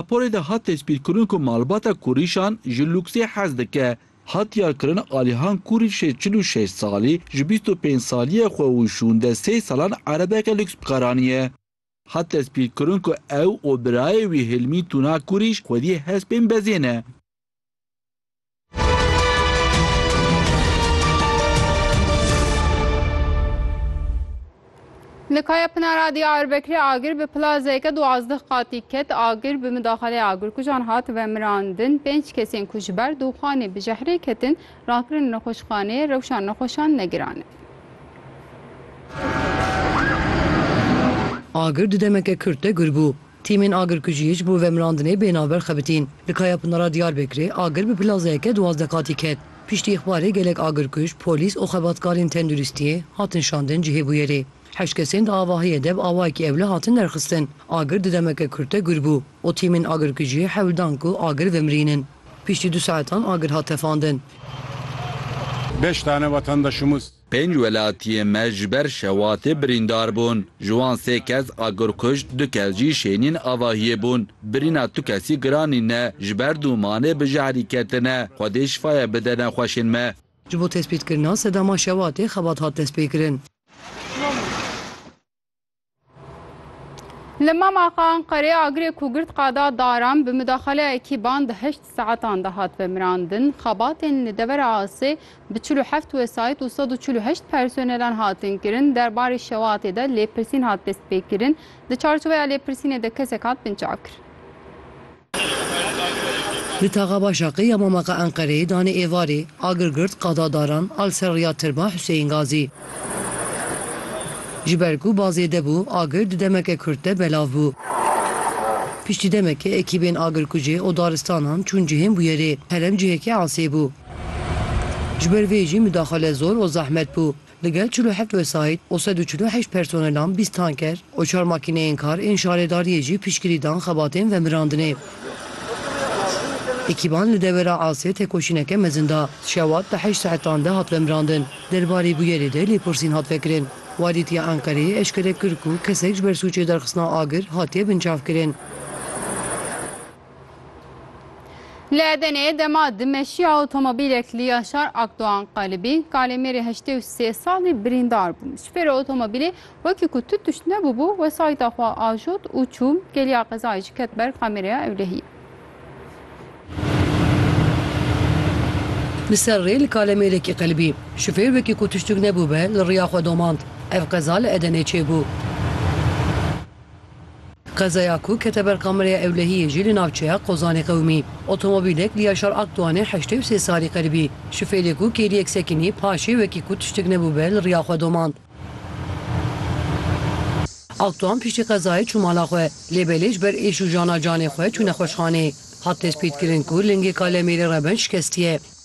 Raporê de hat destpîrkirin ku malbata Kurîşan ji lûksê hez dike. Hat diyarkirin Alihan Kurîş jê çil û şeş salî ji bîst û pênc saliyê xwe û şûnde sê salan erebeke lûks bi kar aniye. Hat destpîrkirin ku ew û birayê wî Hilmî Tuna Kurîş xwedî hespên bezê ne. Li Kayapınara Diyarbekirê agir bi plazeke duwazdeh qatî ket. Agir bi midaxalê agirkujan hat vemirandin. Pênc kesên ku ji ber dûxanê bi jehrê ketin rakirin nexweşxaneyê rewşa nexweşan negirane. Agir di demeke kurt de gir bû. Tîmên agirkujiyê ji bo vemirandinê bê navber xebitîn. Li Kayapınara Diyarbekirê agir bi plazeyeke duwazdeh qatî ket. Piştî îxbarê gelek agirkuj, polîs û xebatkarên tenduristiyê hatin şandin cihê bûyerê. Heşt kesên di avahiyê de bi awayekî ewle hatin derxistin. Agir di demeke kurt de gür bû û tîmên agirkujiyê hewl dan ku agir vemirînin. Piştî du saetan agir hat tefandin. Beş tane vatandaşımız Pênc welatiyên me ji ber şewatê birîndar bûn. Ji wan sê kes agir kuşt, du kes jî şênîn avahiyê bûn. Birîna tu kesî giran nîne, ji ber dûmanê bi jehrî ketine. Xwedê şifaye bide nexweşên me. Ji bo tespîtkirina sedama şewatê xebat hat destpêkirin. Li mama xwe Enqerê agirê ku girt qada daran bi mudaxaleya ekîban di heşt saetan de hat vemirandin. Xebatên li devera Asê bi çil û heft wesayît û sed û çil û heşt personelan hatin kirin. Derbarê şewatê de lêpirsîn hat destpêkirin. Di çarçoveya lêpirsînê de kesek hat binçavkirin. Li taxa Başakê ya Mamaqa Enqereyê danê êvarê, agir girt qada Daran a li ser rêya Tirba Huseyîn Gazî. Ji ber ku ba zêde bû, agir di demeke kurt de belav bû. Piştî demekê ekîbên agirkujê û daristanan çûn cihên bûyerê. Herem cihekî asê bû. Ji ber vê jî mudaxile zor û zehmet bû. Li gel çil û heft wesayît û sed û çil û heşt personelan, bîst tanker û çar makîneyên kar ên şaredariyê jî piştgirî dan xebatên vemirandinê. Ekîban li dewera Asê tekoşîneke mezin da. Şewat di heşt saetan de hat vemirandin. Derbarê bûyerê de lêpirsîn hat vekirin. Walît ya Enqereyê eşkere kir ku kesek ji ber sûcê derxistina agir hatiye binçavkirin. Li Edeneyê dema di meşiya otomobîlek li Yaşar Akdoğan qalibî, kalêmêrê heştê û sê salî birîndar bû. Şofêra otomobîlê wekî ku tu tişt nebûbû, wesayîta xwe ajot û çû. Geliya qezayê jî ket ber kameraya ewlehiyê. Li ser rê li kalêmêrekî qelibî, şofêr wekî ku tiştuk nebûbe li riya xwe domand. Ev qeza li Edenê çêbû. Qezaya ku kete ber kamereya ewlehiyê jî li navçeya Qozanê qewimî. Otomobîlek li Yaşar Akdoğanê heştê û sê salî qiribî. Şofêrê ku kêliyek sekinî, paşê wekî ku tiştik nebûbe li riya xwe domand. Akdoğan piştî qezayê çû mala xwe, lê belê ji ber êş û jana canê xwe çû nexweşxaneyê. Hat tespîtkirin ku lingê Kalemêrê Reben şikestiye.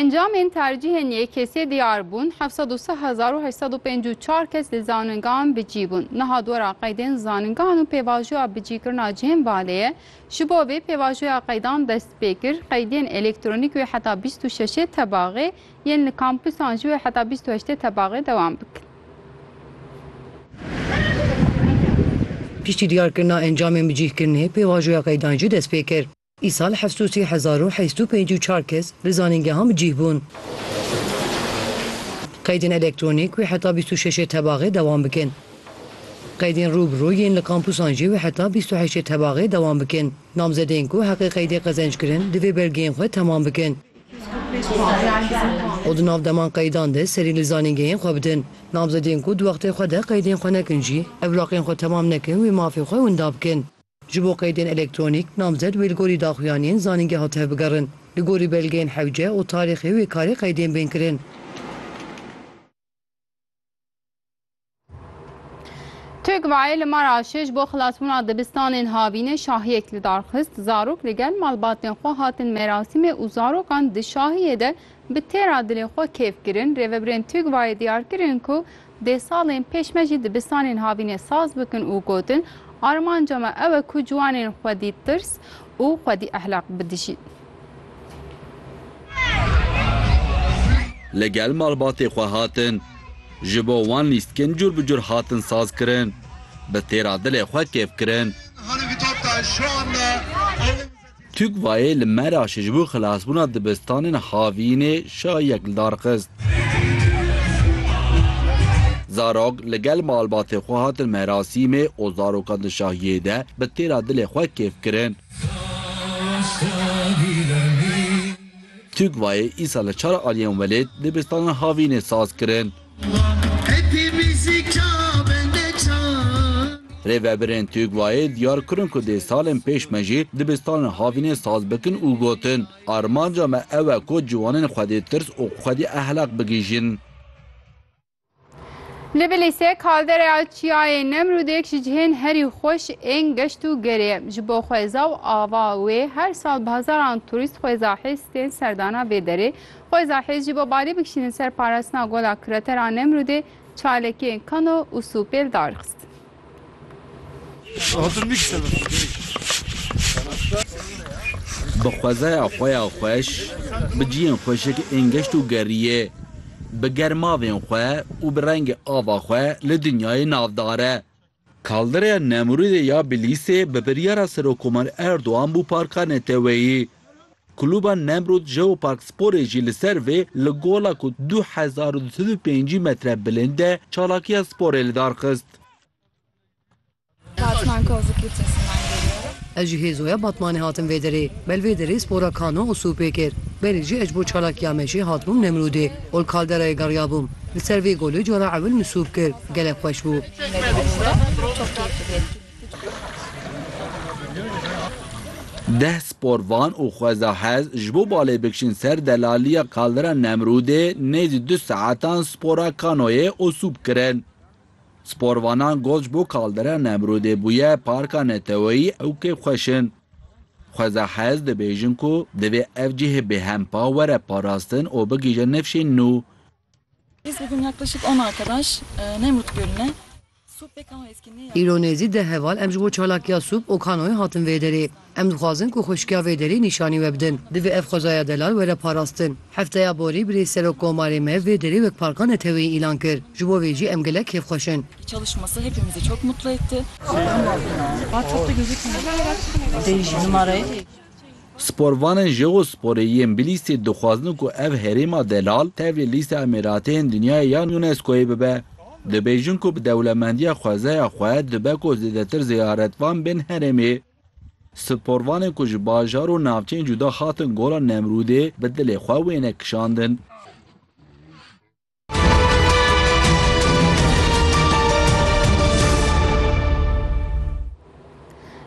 Encamên tercîhên yekesiyê diyar bûn, heft sed û sih hezar û heşt sed û pêncî û çar kes li zaningehan bi cî bûn. Niha di wera qeydên zaningehan û pêvajoya bicîkirina cihên baleyê, ji bo vê pêvajoya qeydan dest pê kir, qeydiyên elektronîk wê heta bîst û şeşê tebaxê yên li kampusan jî wê heta bîst û heştê tebaxê dewam bikin. Piştî diyarkirina encamên bi cîhkirinê, pêvajoya qeydan jî dest pê kir. Îsal heft û sî hezar û heyst û pêncî û çar kes li zanîngehan bi cîh bûn. Qeydên elektronîk wê heta bîst û şeşê tebaxê dewam bikin. Qeydên rû bi rû yên li kampûsan jî wê heta bîst û heştê tebaxê dewam bikin. Namzedên ku heqê qeydê qezenc kirin, divê belgeyên xwe temam bikin. û di nav deman qeydan de serî li zanîngehên xwe bidin. Namzedên ku di wextê xwe de qeydên xwe nekin jî, ev laqên xwe temam nekin wê mafê xwe winda bikin. Ji bo qeydên elektronîk, namzed wê li gorî daxuyaniyên zanîngeha tevbigerin. Li gorî belgeyên hewce û tarîxê wê karê qeydên bên kirin. Tugvayê li Maraşê ji bo xilasbûna dibistanên havînê şahiyek li dar xist, zarok li gel malbatên xwe hatin merasîmê û zarokan di şahiyê de bi têra dilê xwe kêf kirin. Rêvebirên Tugvayê diyar kirin ku dê salên pêş me jî dibistanên havînê saz bikin û gotin, Armanca me ew e ku ciwanên xwedî tirs û xwedî ehlaq bidijîn. Li gel malbatê xwe hatin. Ji bo wan lîstkin cur bi cur hatin saz kirin. Bi têra dilê xwe kêf kirin. Tûkvayê li Meraşê ji bo xilasbûna dibistanên havînê şayiyek li dar xist. Zarok li gel malbatê xwe hatin merasîmê û zarokan di şahiyê de bi têra dilê xwe kêf kirin. Tugvayê îsa li çar aliyên welêt dibistana havînê saz kirin. Rêveberên Tugvayê diyar kirin ku dê salên pêş me jî dibistana havînê saz bikin û gotin, Armanca me ew e ku ciwanên xwedî tirs û xwedî ehlaq bigihîjin. Li Bilîsê kaldereya çiyayê Nemrûdêk ji cihên herî xweş ên geşt û gerê ye. Ji bo xweza û ava wê her sal bi hezaran turîst xweza hêz tên serdana vê derê. Xweza hêz jî bo balê bikişînin ser parastina gola kiretera Nemrûdê çalekiyên kano û sûpêl darixistin. Bi xwezaya xwe ya xweş, bi ciyên xweşik ên geşt û geriyê, bi germavên xwe û bi rengê ava xwe li dinyayê navdar e. Kaldereya Nemrûdê ya Bilîsê bi biryara Serokkomar Erdogan bû parka neteweyî. Klûba Nemrûd Jeopark Sporê jî li ser vê li gola ku du hezar û du sed û pêncî metre bilind e çalakiya sporê li dar xist. Batman Kozu Kilisesinden geliyorum. Ez ji hêzoya Batmanê hatim vê derê. Me li vê derê spora kano û sûpê kir. Belê jî ez ji bo çalakiya me jê hatibûm Nemrûdê û li kalderayê geriyabûm. Li ser vê golê cara ewil min sûp kir. Gelek xweş bû. Çek me li vir e. Çok keyifli bir etkinlik. Deh sporvan û xwezahez ji bo balê bikişin ser delaliya Kaldera Nemrûdê nêzî du saetan spora kanoyê û sûp kirin. Sporvanan got ji bo Kaldera Nemrûdê bûye parka neteweyî ew kêfxweş in. Xwezahez dibêjin ku divê ev cihê bêhempa were parastin û bigihîje nifşên nû. Îro nêzî deh heval em ji bo çalakiya Sûp Okanoyê hatin vê derê. Em dixwazin ku xweşikiya vê derê nîşanî we bidin. Divê ev xwezaya delal were parastin. Hefteya borî birêz Serokkomarê me vê derê wek parka neteweyî îlan kir. Ji bo vê jî em gelek kêfxweş in. Sporvanên Jeosporê yên Bilîsê dixwazin ku ev herêma delal tevlî lîsta Emêrateyên Dinyayê yan UNESCO'yê bibe. Dibêjin ku bi dewlemendiya xwezeya xwe dibe ku zêdetir ziyaretvan bên herêmê. Sporvanên ku ji bajar û navçeyên cuda hatin Gola Nemrûdê bi dilê xwe wêne kişandin.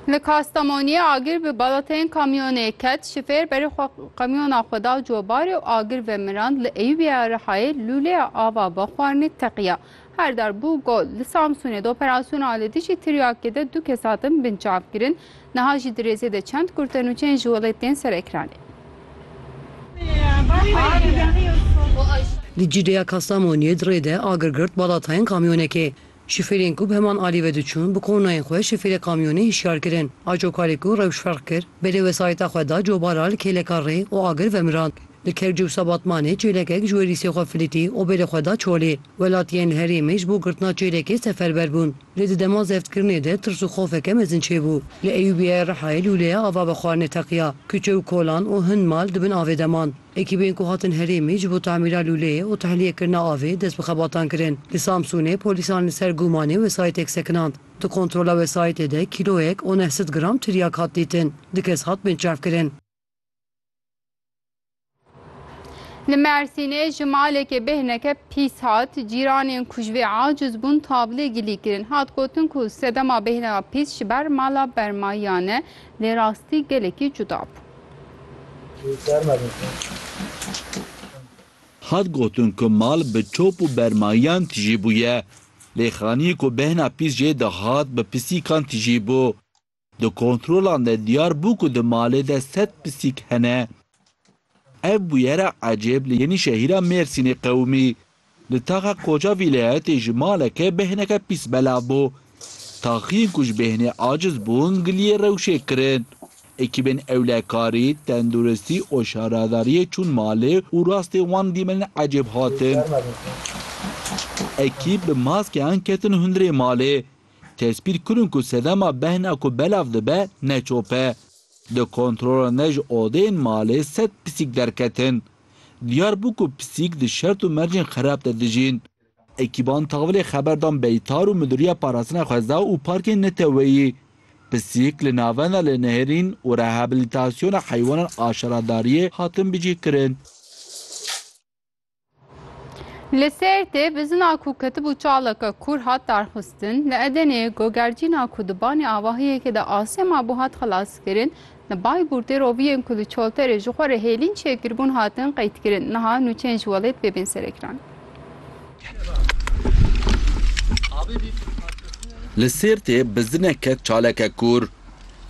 Li Kastamoniyê agir bi balateyên kamyonê ket, şifêr berê xwe kamyona xwe da cobarê û agir vemirand li Eyûbiya Rihayê lûleya ava bixwarinê teqiya. Her dar bû gol. Li Samsûnê di operasyona li dijî tiryakê de du kes hatin binçavkirin. Niha jî di rêzê de çend kurd te nûçeyên ji welêt tên ser ekranê. Di Cîrêya Kastamoniyê di rê de agir girt bala tayên kamyonekê. Şofêrên ku bi heman alî ve diçûn bi kornayên xwe şofêrê kamyonê hişyar kirin. Acokarê ku rewş ferq kir, belê wesayîta xwe da cobara li kêleka rê û agir vemirand. Li Kerciwsa Batmanê çêlekek ji werîsê xwe filîtî û bêrê xwe da çolê. Welatiyên herêmê ji bo girtina çêlekê seferber bûn. Lê di dema zevtkirinê de tirs û xofeke mezin çêbû. Li Eyûbiyeyê Rihayê lûleya ava bi xwarinê teqiya. Kuçe û kolan û hin mal di bin avê de man. Ekîbên ku hatin herêmê ji bo tamîra lûleyê û tehliyekirina avê dest bi xebatan kirin. Li Samsûnê polîsan li ser gumanê wesayîtek sekinand. Di kontrola wesayîtê de kîloyek û neh sed gram tiryak hat dîtin. Du kes hatibin çavkirin. Li Mersînê ji malekê bêhneke pîs hat, cîranên ku ji vê aciz bûn tavlê gilî kirin. Hat gotin ku sedema bêhneya pîs ji ber mala bermayiyan e, lê rastî gelekî cuda bû. Hat gotin ku mal bi çop û bermayiyan tijî bûye, lê xaniyê ku bêhna pîs jê dihat bi pisîkan tijî bû. Di kontrolan de diyar bû ku di malê de sed pisîk hene. Ev bûyera ecêb li Yenîşehîra Mêrsînê qewimî. Li taxa koça vîlayetê ji maleke bêhneke pîs belav bû. Taxiyên ku ji bêhnê aciz bûn giliyê rewşê kirin. Ekîbên ewlekarî, tenduristî û şaradariyê çûn malê û rastê wan dîmenên ecêb hatin. Ekîb bi maskeyan ketin hundirê malê. Tespît kirin ku sedema behna ku belav dibe ne çop e. Di kontrola ne ji odeyên malê sed pisîk derketin. Diyar bû ku pisîk di şert û mercên xerab de dijîn. Ekîban Tavlê xeber dan Beytar û Midûriya Parastina Xweza û Parkên Neteweyî. Pisîk li navenda li nehêrîn û rehablîtasyona heywanan a şaradariyê hatin bicihkirin. Li Sêrtê bizina ku ketibû çaleke kûr hat darxistin, li Edenê gogercîna ku di banê avahiyekê de asê mabû hat xelaskirin, li Baybûr tê roviyên ku li Çolterê ji xwe re hêlîn çêkiribûn hatin qeydkirin, niha nûçeyên ji welêt vê bên serekiran. Li Sêrtê bizineke çaleke kûr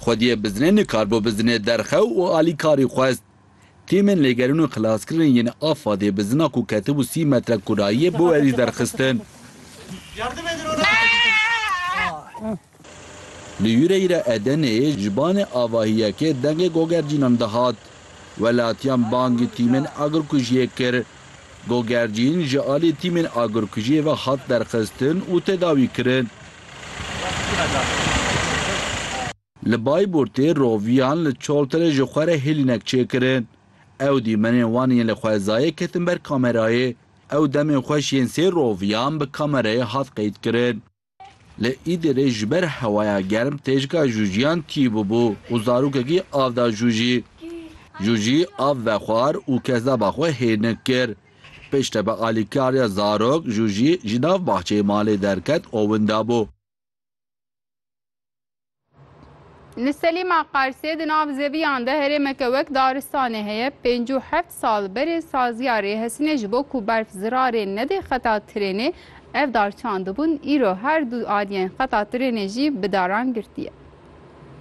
xwediyê bizinê nikarbû bizinê derxew û alîkarî xwest. Tîmên lêgerîn û xilaskirinê yên AFAD'ê bi zina ku ketibû sî metre kurayiyê bi werî derxistin. Li Hûreyra Edeneyê ji banê avahî yekê dengê gogercînan dihat. Welatiyan bangî tîmên agirkujiyê kir. Gogercîn ji aliyê tîmên agirkujiyê ve hat derxistin û tedawîkirin. Li Bayburtê roviyan li Çolterê ji xwe re hêlînek çêkirin. Ew dîmenên wan yên li xwezayê ketin ber kamerayê. Ew demên xweş yên sê roviyan bi kamerayê hat qeydkirin. Li Îdirê ji ber hewaya germ têjika jûjiyan tî bûbû û zarokekî av da jûjî. Jûjî av vexwar û kezdaba xwe hêlnik kir. Piştre bi alîkariya zarok jûjî ji nav baxçeyê malê derket û winda bû. Li Selîma Qarsê di nav zeviyan de herêmeke wek daristanê heye. Pêncî û heft sal berê saziya rêhesinê ji bo ku berf zirarê nedê xeta tirênê ev dar çandibûn, îro her du aliyên xeta tirênê jî bi daran girtiye.